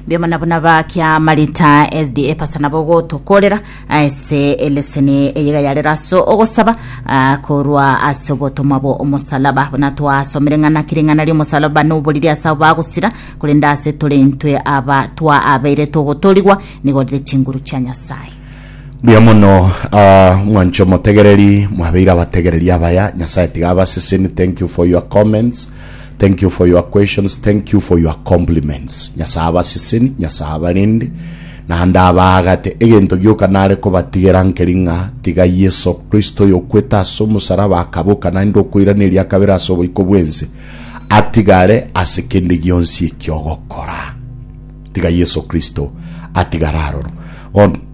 Mbioma nabo nabakia marita SDA pastor nabo gotokorera ase eleseni eyega yarera ase ogosaba ah, korwa ase obotomwa bo omosalaba buna twasomire ng'ana kiri ng'ana ria omosalaba noboriri ase abo bagosira korende ase tore intwe aba twa abeire togotorigwa nigo rire chinguru chia Nyasaye Buya mono ah, mwancho motegereri mwabeire abategereri abaya nyasaye tiga abaseseni thank you for your comments Thank you for your questions, thank you for your compliments. Nyasae abaseseni, Nyasae abarende, naende abaagate. Egento gioka nare kobatigera nkeri ng'a tiga Yeso Kristo oyokwete ase omosaraba akaboka naende okoiraneria akabere ase oboiko bwense atigare ase kende gionsi ekiogokora. Tiga Yeso Kristo atigare aroro. Bono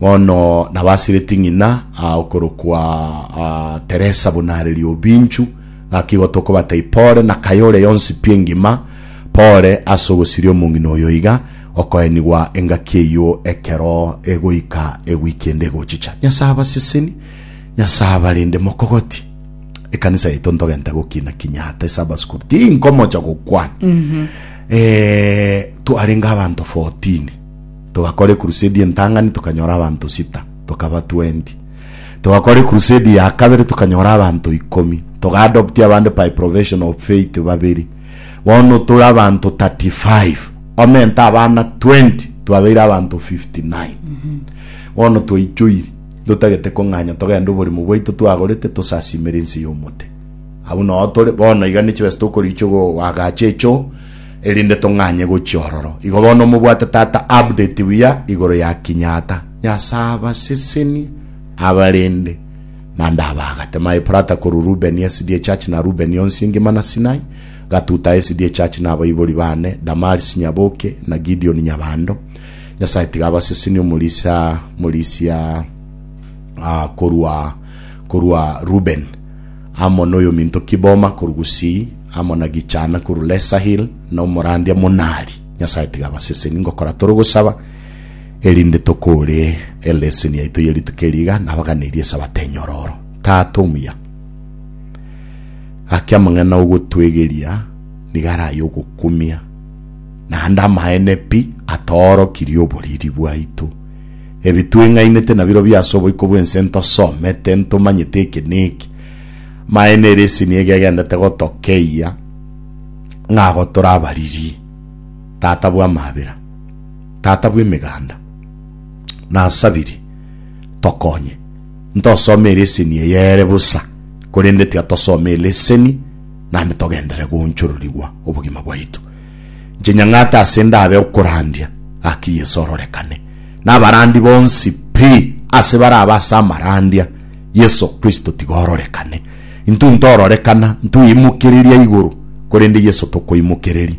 Bono nabasireti ng'ina aa okorokwa aa Teresa buna are riobinchu, gaki igo tokobatai pore na kayore yonsi pi engima, pore ase ogosiria omong'ina oyo iga, okoenigwa engaki eyio ekero egoika ewiki ende egochicha. Nyasae abaseseni, Nyasae abarinde mokogoti. Ekanisa yaito ntogenta gokina kinya ata ase abaskuru, tinkomocha gokwana. Eh, twarenge abanto 14. Togakora ekurusedi entang'ani tokanyora abanto sita, tokaba twendi. Togakora ekurusedi ya kabere tokanyora abanto ikomi. Togaadoptia abande by profession of faith babere. Bono tore abanto 35. Omenta abana twendi twabeire abanto 59. Bono twaichoiri, totagete kong'anya togende oborimo bwaito twagorete tosasimere ense y'omote. Abwo nao tore, bono iga ne chibesa tokoriichwa goagacha echoo, erinde tong'anye gochia ororo. Igo bono mobwate tata update buya igoro ya Kinyatta. Nyasae abasesenie abarinde manda abagate my prata korwa Ruben SDA church na Ruben onsi ngima na Sinai gatuta SDA church na abaibori bane Damaris Nyaboke na Gideon Nyabando Nyasae tiga abasesenie omorisia morisia uh, korwa korwa Ruben amo noyominto Kiboma korwa gusii, amo na Gichana korwa Lesahil, na omorandia Monali. Nyasae tiga abaseseni ngokora tore ogosaba, erinde tokore eleseni yaito ye rituko eri iga, nabaganeirie esabato enyororo. Tata omuya, gaki amang'ana ogotwegeria nigo araye ogokumia, naende amaene pi atoorokirie oboriri bwaito. Ebi tweng'ainete nabirobio ase oboiko bw'ense ntosomete, ntomanyete eke neke, Amaene ere esini ege egendete gotokeyia ng'a ago tore abariri, tata bw'amabera, tata bw'emeganda, nasabiri, tokonye. Ntosome eleseni eye ere bosa, korende tiatosome eleseni naende togendere goonchororigwa obogima bwaito. Inche nyang'ate ase ndabe okorandia gaki Yeso ororekane nabarandi bonsi pi, ase barabe ase amarandia Yeso Kristo tiga ororekane. Intwe ntororekana, ntuimokereria igoro, korende Yeso tokoimokereria.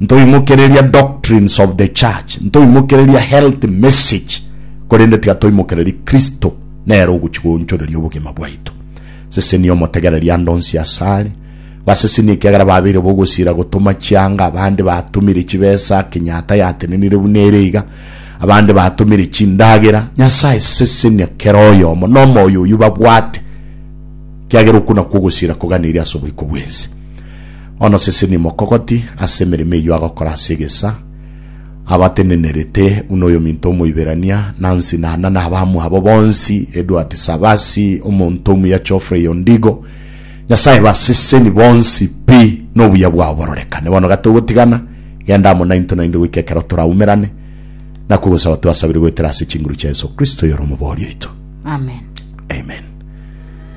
Ntoimokereria doctrines of the church, ntoimokereria health message, korende tiga toimokereri Kristo nere ogochi goonchoreria obogima bwaito. Sesenia omotegereri ande onsi asare, Baseseni ekiagera babeire bogosiira gotoma chianga, abande batomire chibesa, kenyata yatenenire buna ere iga, abande batomire chindagera. Nyasae, sesenia kera oyomo nomoyo oyio babwate, kiagera okwo nakwo ogosiira koganeiri ase oboiko bwense. Bono seseni mokogoti ase emeremo eyio agokora ase egesa, abatenenerete buna oyominto Omoiberania, Nancy Nana na abamwabo bonsi, Edward Savasi, omonto omuya Geoffrey Ondigo, Nyasae baseseni bonsi pi, nobuya bwao bororekane. Bono gatogotigana, genda amo naintwe naende goika ekero toraumerane, nakwo ogosaba twasabire goetera ase chinguru chia Yeso Kristo oyore Omobori oito. Amen. Amen.